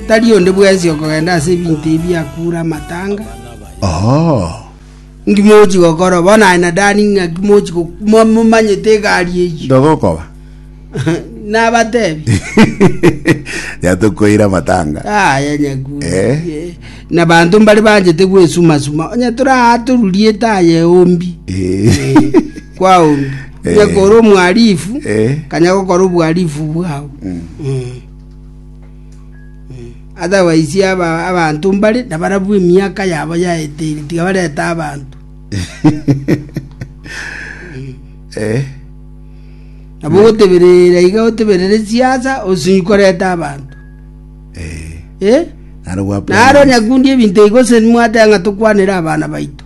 Tari onde bwensi okogenda ase ebinto ebi biakure amatanga. Inki mogochi gokora? Bono aye na Dani ng'aki mogochi go- mo- momanyete egari eyio? ndogokoba Nabatebi. yatokoire amatanga Aya nyakuri. Eh. Eh, Na banto mbare banchete gwesumasuma. Onye tore aa torurie etaye ombi. Eh. kwao, onye Eh. kore omwarifu Eh. kanya gokora obwarifu bwao Mm. Mm. otherwise aba- abanto mbare na barabwo emiaka yabo yaeteire tiga bareta abanto Eh. nabo ogoteberera iga oteberere siasa osinyi koreta abanto Eh. Eh? Naro gwa naro nyakundi ebinto igose mwate ng'a tokwanere abana baito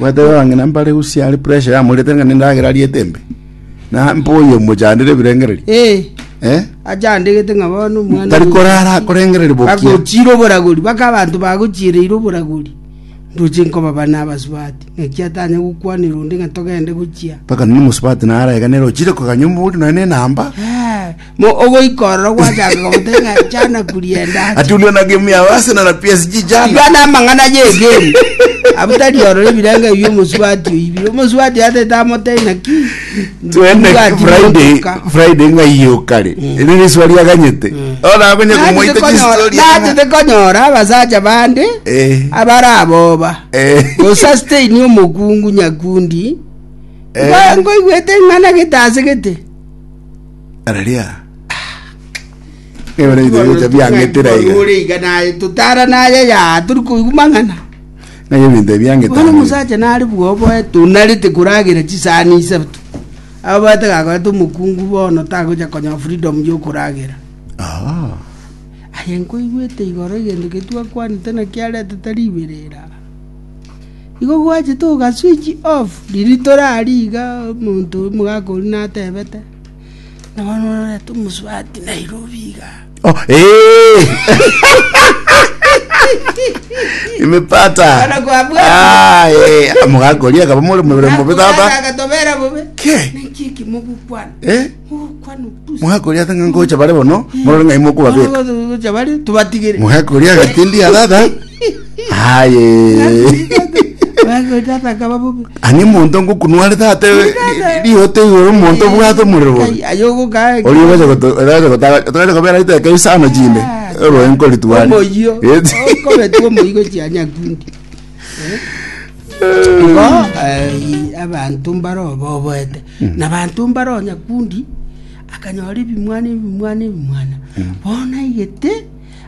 Mwateba abang'ina mbare usia are pressure yamorete ng'a nendagera ariete embe. Na mpoyo omochandire ebirengererio. Eh, Eh? achandegete ng'a bono omwana Tari oyo- korara akorengereria bokia. bagochire oboragori baka abanto bagochiereire oboragori ndoche nkobaba nabasubati ng'aki atanya gokwanera onde ng'a togende gochia Mpaka nini mosubati naraeganera ochire koganya omori nonya nenamba. Eh, Mo ogoika ororo gwachakire goteba ng'a jana kuri endache. Atulwe na game ya Arsenal na PSG Tibia jana. na amang'ana y'egemu abwo tari ororo ebirengo ebi omosubati oibire omosubati yatete amotebia naki Twende mbwati Friday, motoka. Friday ng'ai okare. Eri riswa riaganyete. Ona akonye kumoita Natete konyora- chistori. natete konyora abasacha bande Eh. abaraboba Eh. gosasteini omokungu nyakundi Eh. Ngo- ngoigwete ng'ana gete ase gete Haleluya. Ebere bito bigocha biang'etera iga. Ore iga naye totara naye ya turi koigwa mang'ana. Naye ebinto ebi biang'etera. Bono omosacha nare bwoboe tonarete koragera chisani isato. Abaete gakorete omokungu bono tagocha konya freedom yokoragera. Ah. Aye nkoigwete igoro egento getwakwanete nakiaretete riberera. Igo gwachete oka switch off riria tore aria iga omonto omogaka oria natebete, na bono ororete omosubati Nairobi iga. Oh, eh! Nimepata. Bana kwa bwana. Ah, eh, mogakoria akaba muri muri mubi tata. Akatobera bobe. Ke. Niki kimogukwana. Eh? Mogakoria ata ng'a ngocha bare bono, morore ng'ai mokobabeka. Gocha bare tubatigere. Mogakoria agatindi atata. Aye. Bagocha takaba bubi. Ani monto ngokunware tata rihote igoro monto bwate omorero bobe. Ayogo ka. Ori ogocha goto ogocha gota otogocha kobera iteka isano chinde. Oroe nkoritware. Omoyio. Eti. Okobetwa omoyio gochia nyakundi. Igo eh, abanto mbare oboboete na abanto mbare o nyakundi akanyora ebimwana ebimwana ebimwana bono aigete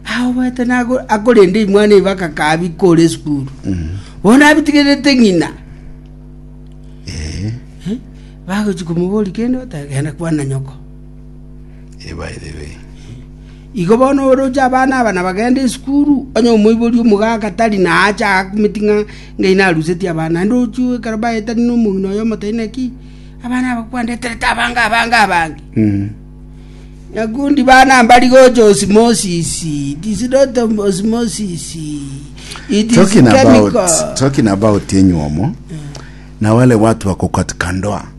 aoboete nago- akorenda ebimwana ebi bakakabika ore esukuru bono abitigerete ng'ina Eh, bagochi komobori kende batagenda kwana nyoko ebairebe. Igo bono oroche abana aba na bagende isukuru, onye omoibori omogaka tari naache aakumeti ng'a ngai narusetie abana, naende oroche ekero baetani nomong'ina oye omotaini naki abana aba kwandeterete abange abange abange. Nyakundi bana mbari gocha osimosisi, it is not osmosisi, it is Talking about, chemical. talking about enywomo, na wale watu wako katika ndoa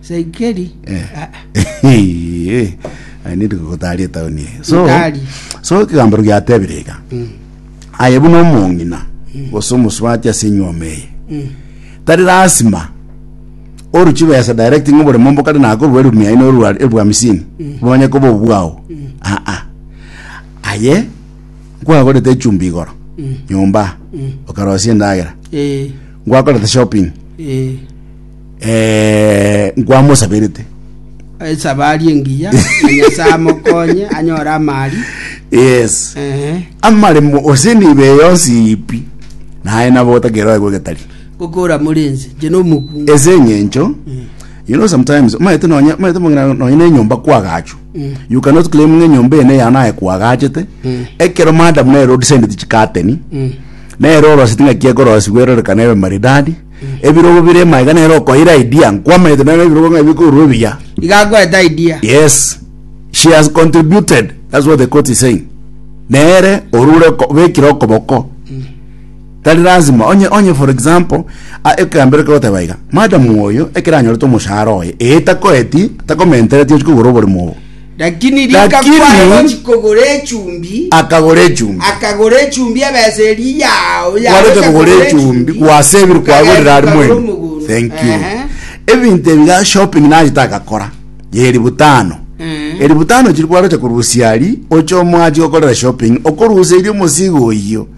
Saikeri. Eh. Ah, Eh, I need gotaria etaoni eye. so Gotari. so ekegambero giatebire iga mm, aye buna omong'ina gose omosubati ase enyuoma eye mm, tari lasima oru chibesa direct ng'a oboremo mbo kare nakorwa elfu mia ine orwa elfu hamsini bonye koba obwao aa aye nkwagorete echumbi igoro nyomba okarosia endagera eh, nkwakorete shopping eh, eh, nkwamosaberete Esabari engiya, na Nyasae amokonye anyore amari. yes Ehe. amaremo ose nibe yonsi ipi naye nabo otakeroe gwegetari Gokora muri ense, nche nomokungu. ese eng'encho you know sometimes omaete nonya omaete mong'ina nonya na enyomba kwagachu you cannot claim ng'a enyomba ene yao naye kwagachete ekero madam nere odisendeti chikateni nere oroseti ng'a kiekorosigwa erorekane ebe maridadi ebirogo bire ime iga nere okoira idea nkwamaete nero ebirogo ng'a bikorwa ebiya iga agoeta idea yes she has contributed that's what the court is saying nere orure ko- bekire okoboko tari lazima onye onye for example a- ekegambero kegoteba iga madam oyo ekero anyorete omoshahara oye ee takoeti takomentereti ochia kogora oborimo obo Lakini akagora echumbi. Kwarete kogora echumbi gwase ebiru kwagorire aria mwenyene. Thank you. Ebinto ebi ga shopping nachete agakora ya elifu tano. Elifu tano chiria kwarete korusia aria oche omoachi gokorera shopping okoruseria omosigo oyio.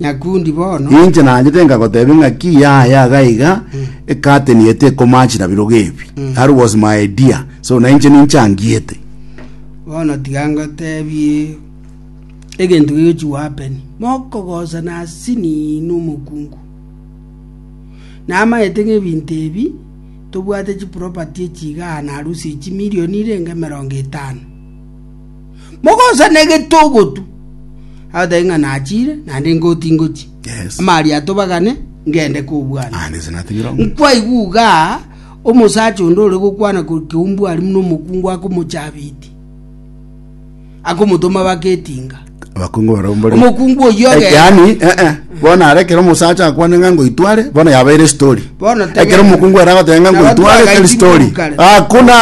Nyakundi bono Inche naanchete nkagotebia ng'a ki yaya iga iga ecurtain ye tekomatch na birogo ebi. That was my idea. So na inche ninchangiete. bono tiga ngotebie egento gegochi gohappen mokogosa na sini na omokungu namaete ng'a ebinto ebi tobwate chiproperty echi igaa na harusi ya chimilion irenge emerongo etano mogosana egete ogotu agotae ng'a nachire naende ngoti ngochi Yes. amari atobagane ngende kobwana Ah, nese natigire omo. nkwaigu iga omosacha onde ore gokwana kore keumbu ari muna omokungu akomochabiti akomotoma baketinga abakungu barabwo mbore omokungu oyio Eh, ogenda yaani eh, eh, bono are ekero omosacha akwane ng'a ngoitware bono yabeire story Bono tebe- ekero omokungu ere agoteba ng'a ngoitware Nabatwaga teri story itingu kare. hakuna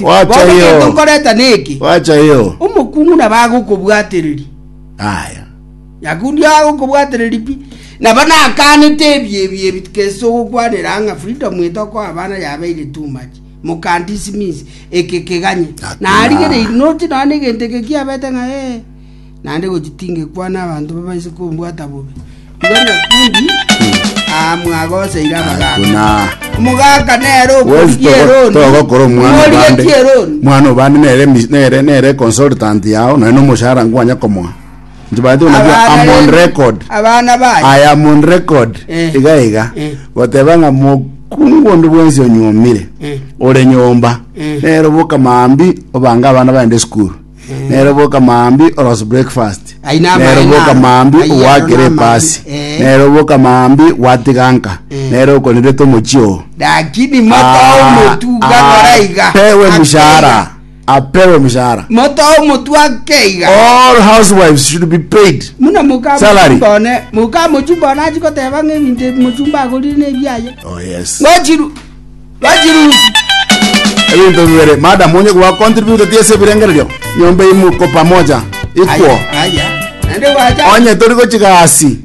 wacha Bono kento hiyo nkoreta neki wacha hiyo omokungu nabo agokobwatereri aya nyakundi agokobwatereri pi nabo nakanete ebi ebi ebi kese ogokwanera ng'a freedom etokoa abana yabeire too much Mokandisimizi, eke keganye, na arigereiri noti nonya negento eke kiabete ng'a ee, naende gochi tingekwana abanto babaise kombwata bobe. Igo nyakundi aa mwagoseire abagaaka. Buna. Omogaka nere Wezi okorigia togo- eroni. togokora omwana Omorigia obande ki eroni? omwana obande nere mis- nere nere consultant yao naye nomoshahara nkwanya komoa Inche baete onabia Abana am on b'ebi- record. abana baye I am on record. Eh. Iga iga. Eh. Goteba ng'a mokungu onde bwensi onyuomire. Eh. Ore nyomba. Eh. Nero boka maambi obange abana baende school. Nero boka maambi orose breakfast. Ai na Nero amae boka naro. maambi Ai yaro owakere na amae. epasi. Eh. Nero boka maambi watiganka. Eh. Nero okonerete omochio. lakini moto omotuga noraiga Pewe mushahara. apewe omochara. Moto o omotwe ake iga. All housewives should be paid Muna moka salary. mochumba one. Moka mochumba one achi goteba ng'a ebinto ebi mochumba agorire nebiaye. Oh yes. Ngochiru. Ngochirusi. Ebinto bibere, madam onye kwa contribute tiese ebirengererio, nyomba imo ko pamoja. Ikwo. Aya. Aya. Naende gwacha. Onye tori gochiga asi.